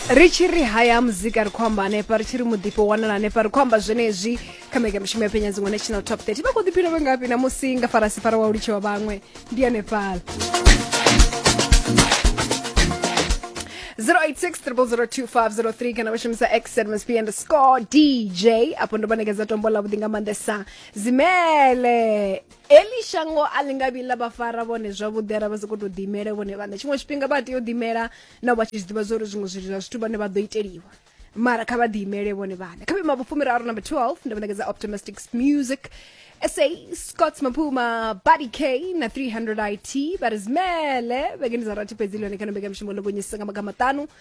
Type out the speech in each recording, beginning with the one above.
ri tshi ri haya muzika ri khou amba hanefha ri tshi ri muḓifho wanala hanefha ri khou amba zwenezwi kha mbekanyamushumo ya penya dziṅwe national top 30 vha khou ḓiphina vhe ngafhi na musi nga farasi fara wa u litshiwa vhaṅwe ndi hanefhala 0860002503 kana vashumisa xmsp underscore dj apo ndo vha nekedza tombo ḽa vhuḓi nga maanḓesa zimele eli shango a ḽi nga vhi ḽa vha fara vhone zwavhuḓi ara vha si khou tou ḓimela vhone vhaṋe tshiṅwe tshifhinga vha tea u ḓimela nao vha tshi zwi ḓivha zwa uri zwiṅwe zwithu zwa zwithu vhane vha ḓo iteliwa mara kha vha ḓiimele vhone vhaṋe kha vhima vhufumiraru number 12 ndo vhanekedza optimistic music sa scott maphuma buddy k na 300 it vha ri zimele vhekeni dza rathi fhedzi ḽone kana mbekamishumo ḽo gonyisisa nga maga maṱanu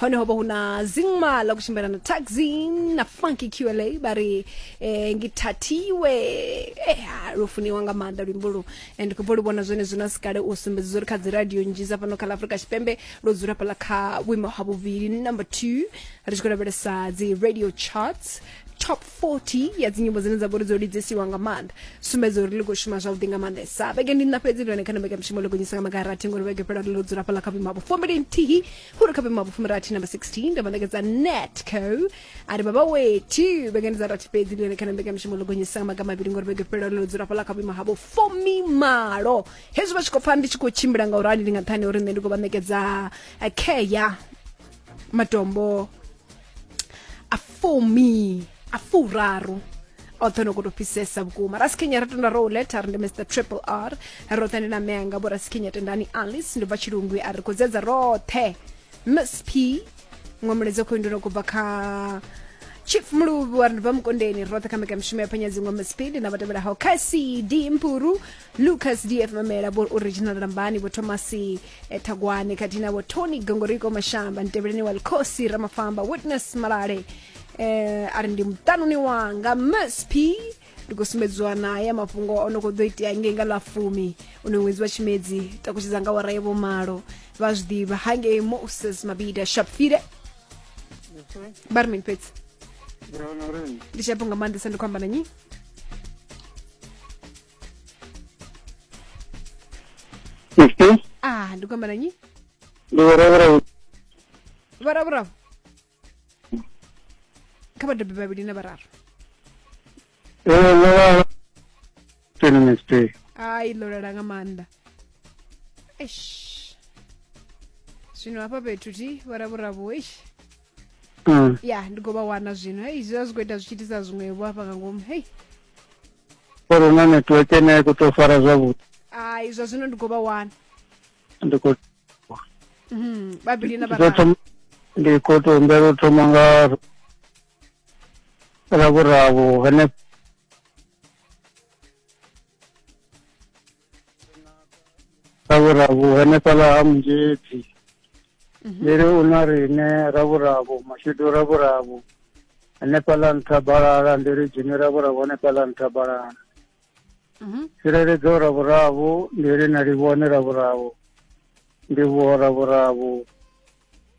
hone ho vha hu na zingma la kutshimbila na taxin na funky qla ba ri eh, ngithathiwe eh, ha, lwo funiwa nga maanḓa luimbo lu and khou lu vhona zwone zwino sikale u sumbedza uri kha dzi radio nnzhi dza fhano kha ḽa afurika tshipembe lwo dzula fhala kha vhuimo ha vhuvhili number two ri tshi khou lavhelesa dzi radio charts top 40 ya dzinyimbo dzine dza vha uri dzo lidzesiwa nga maanḓa sumbedza uri ḽi khou shuma zwavhuḓi nga maanḓesa vhege ndi nna fhedzi ndi hone kha na mbekamishumo ḽo gonyisa nga magarathi ngori vhege fhela ḽo dzula fhala kha vhuimo ha vhufumbili nthihi khuri kha vhema vhufumi rathi namba 16 nda manekedza netco ari baba wethu vhengani dza rathi fhedzi ndi yone kana mbekanyamushumo ḽo gonyisa maga mavhili ngori vhege fhela ḽo dzula fhala kha vhima havho fumi malo hezwi vha tshi khou pfa ndi tshi khou tshimbila nga urali ndi nga nṱhani uri nṋe ndi khou vha ṋekedza eh, care matombo a fumi a furaru oṱhe no koto fhisesa vhukuma rasikenya ra tenda rou leta ri ndi mr triple r roṱhe ndi na meanga vho rasikenya tendani alice ndi bva tshilungwi a ri khou dzedza roṱhe miss p ṅwe mulezi khou nduno kubva kha chief muluvhi wa ri ndi bva mukondeni roṱhe kha mbekanyamushumo ya phenya dziṅwe miss p ndi na vhatevhelaho kha cd mpuru lucas df mamela vho original rambani vho thomasi ethagwane khathihi navho tony gongoriko mashamba ntevheleni wa likhosi ramafamba witness malale eh, a ri ndi muṱanuni wanga msp ndi khou sumbedziwa naye mafhungo o no khou ḓo itea ngei nga ḽa fumi u no ṅwedzi wa tshimedzi takutshedza nga wara ya vhomalo vha zwi ḓivha hangei moses mabida shapfire vha ri mini fhedzi ndi tshapo nga maanḓesa ndi khou amba na nyi Sim, ah ndi kuamba na nyi ndi vhuravhura vharavhuravu kha vhabebi vhavhili na vhararu vhuravhura. Twenty next day. ai ḽo lala nga maanḓa eish zwino hafha fhethu thi vharavhuravu eish mm. ya ndi khou vha wana zwino hei zwi vha zwi khou ita zwi tshi itisa zwiṅwevho hafha nga ngomu hei uri una network ene ya khou tou fara zwavhuḓi ai zwa zwino ndi khou vha wana ndi khou mhm, vhavhili na vhararu ndi khou tou humbela u thoma nga ravhuraru henefho ravhuravu henefhaḽa ha munzhedzi lele mhm. u na riṋe ravhuravu mashudu ravhuravu hanefhaḽa nṱha balala ndi ri dzhimi ra vhura vhone fhaḽa nṱha balala mhm. tsireledzo ra vhuravu ndi ri na livhone ra vhuravu ndi vhuho ra vhuravu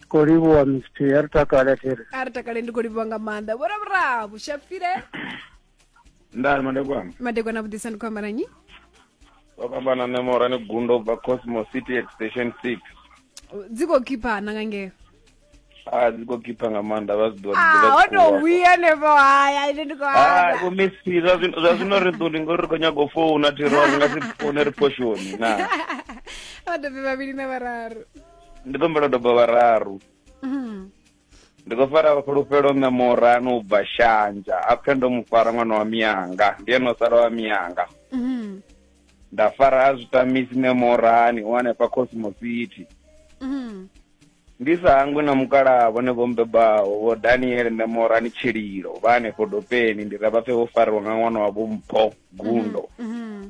khou livhuwa mist a ri takale thiri a ri takale ndi khou livhuwa nga maanḓa vho ra vhuravu shapfile ndani madekwana madekwana vhudisa ndi khou amba na nyi vha khou amba na nṋe morani gundo ubva cosmo city at station six dzi khou khiphana nga ngeo a dzi khou khipha nga maanḓa vha zwi Ah, ho tou ḓivha wia nevo haya ine ndi khou amba vho messi zwa zwino- zwa zwino ri ḓuli ngori ri khou nyaga u founa thi ro ri nga si foune ri poshoni na vha dobe vhavhili na vhararu ndi ḓombela doba vhararu Mhm. ndi khou fara fhulufhelo nṋe murano u bva shanja a pfe ndo mu fara ṅwana wa miyanga ndi ene o sala wa miyanga Mhm. nda fara a zwitamisi nṋe morani u hanefha cosmo city Mhm. ndi sa hangwi na mukalaha vhone vho mbebaho vho daniel nṋe morani tshililo vha hanefho dopeni ndi ra vha pfe vho fariwa nga ṅwana wa vho mpho gundo Mhm.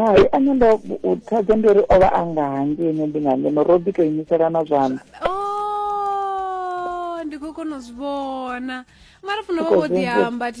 hai ane ndo thaidzo ndi uri o vha a nga hangei ene ndi nga ngeno ro ḓi to imiselana zwanḓa oh, ndi khou kona u zwi vhona mara funa vha vho ḓi amba thi